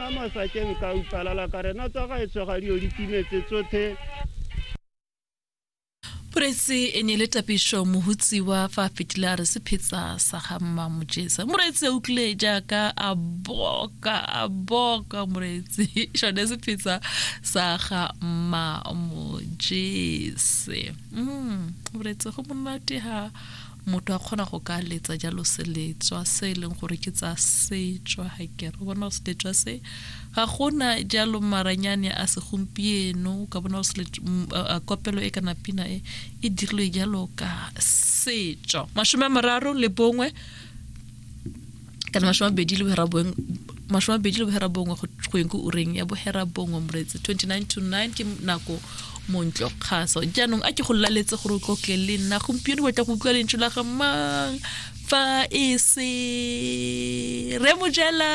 a masakeng ka utlwalala ka rena tsa gaetsho ga dio di timetse tsothe Moreetsi e ne le tapišo mohutsiwa fa a fetile a re sephetsa sa ga mma mojesa moreetsi a utlwile jaaka a boka a boka moreetsi sone sephetsa sa ga mma mojese mm, moreetsi go monate ha Motho a kgona go ka letsa jalo seletswa se e leng gore ke tsa setswa ga kere o bona go seletswa se ga gona jalo maranyane a segompieno ka bona go kopelo e kana pina e e dirilwe jalo ka setswa masome a mararo le bongwe kana mashome a bedi le bohera boeng mashome a bedi le bohera bongwe go yeng ko ureng ya bohera bongwe moretse 29 to 9 ke nako montlo kgaso jaanong a ke go laletse gore o tlotle le nna gompieno batla go utlwa lentso la ga mang fa e se re mojela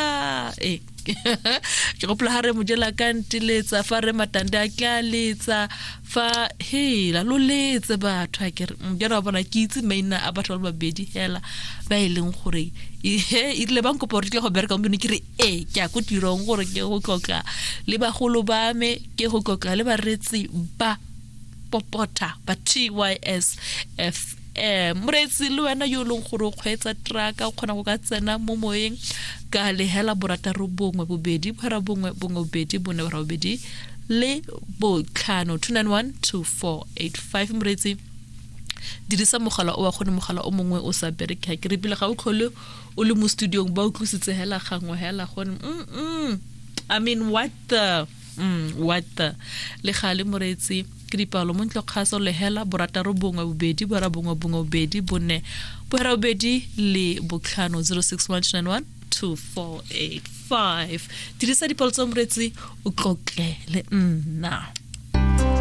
e ke gopola ga re mojela ka nteletsa fa re matande a ke a letsa fa hela lo letse batho a kere mjana mm, wa bona ke itse maina a batho ba le babedi hela ba e leng gore e rile bang kopa gore tle go bereka gompieno ke re ee ke ya ko tirong gore ke go tlotla le bagolo ba me ke go tlotla le baretsi ba popota ba tys f eh moreetsi le wena yo e leng gore o kgweetsa traka o kgona go ka tsena mo moyeng ka lehela borataro bongwe bobedi phara bongwe bongwe bobedi bone bora bobedi le botlhano 2912485 moreetsi dirisa mogala o wa gone mogala o mongwe o sa bereke ga ke re pele ga o tlhole o le mo studiong ba utlwisitse hela gangwe hela gone mm -mm. i mean what the mm, what the le gale moreetsi ke dipalo mo ntlokgaso lehela borataro bongwe bobedi borabongwe bongwe bobedi bone bohera bobedi le botlhano 06191248 dirisa dipalo tsa moretsi o tlotle le nna